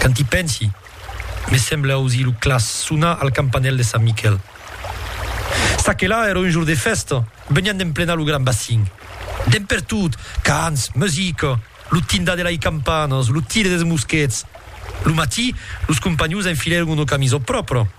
Quand i pensi, me sembla ausir lo claç sonar al campanèl de Sant Miquèl. Çaquelà èra un jorn de fèsta, venián d'emplenar lo gran bacin. Dempertot, cants, musica, lo tindar de lai campanas, lo tire dels mosquets. Lo matí, los companhons enfilèron una camisa pròpra.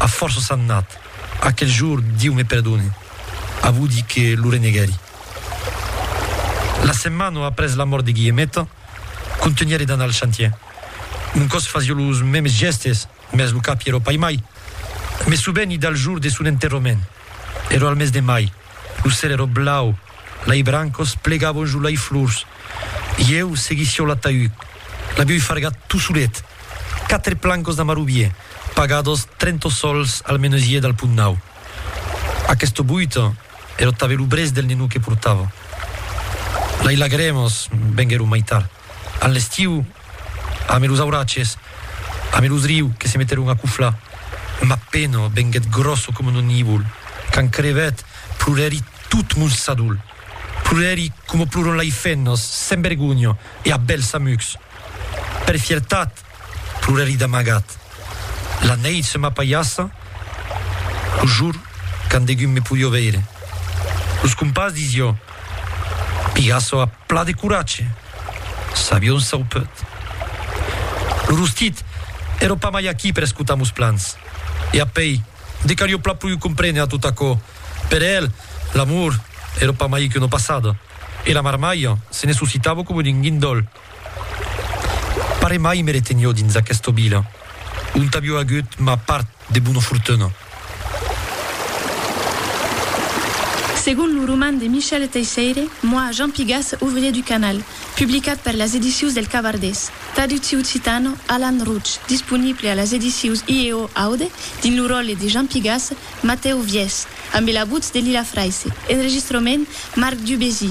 A fòrça s'an nat. Aquel jour, Diu me perdone, avudi que lo reneguèri. La setmana après la mòrt de Guillemeta, contenièri d'anar al chantier. Un còs fasió los mèmes gèstes, mès lo cap i ero paimai. Me soveni del jour de son enterrament. Ero al mes de mai, lo cèl ero blau, lai brancos plegabon jo lai flors, ieu seguissió l'ataüd, l'avioi fargat tu solet, quatre plancos d'amarubier, pagados trento sols al menesier dal Pont Nau. Aquesto boiton ero tabé lo brèç del nenou que portava. Lai lagremos venguèron mai tard. a l'estiu, ame los auratges, ame los riu que se meteron a cuflar, ma pena venguet grosso coma un nivol, quand crevet, plorèri tot mon sadol, plorèri coma ploron lai fennas, sen vergonha e a bèls amucs. Per fiertat. Plorèri d'amagat. La nèit se m'apaiassa lo jor quand degun me podió veire. Los compars disió, Pigasso a pla de coratge! Sabió un saupeut. Lo rostit èró pas mai aquí per escotar mos plans. E apèi, de qu'arió pla pruiu comprene a tot aquò, per el, l'amor èró pas mai que una passada, e la marmalha se ne suscitavo coma d'un guindòl. Pare mai me retenió dins aquesta vila, ont avió agut ma part de bona fortuna. Segon lo roman de Michel Teisseire, Moi, Jean Pigas, ouvrier du canal, publicat per las edicius del Cavardés, traductiu occitano, Alan Rouch, disponible a las edicius IEO Aude, dins lo ròle de Jean Pigas, Matèu Viès, ambe la votz de Lila Fraisse, enregistrament, Marc Dubésy,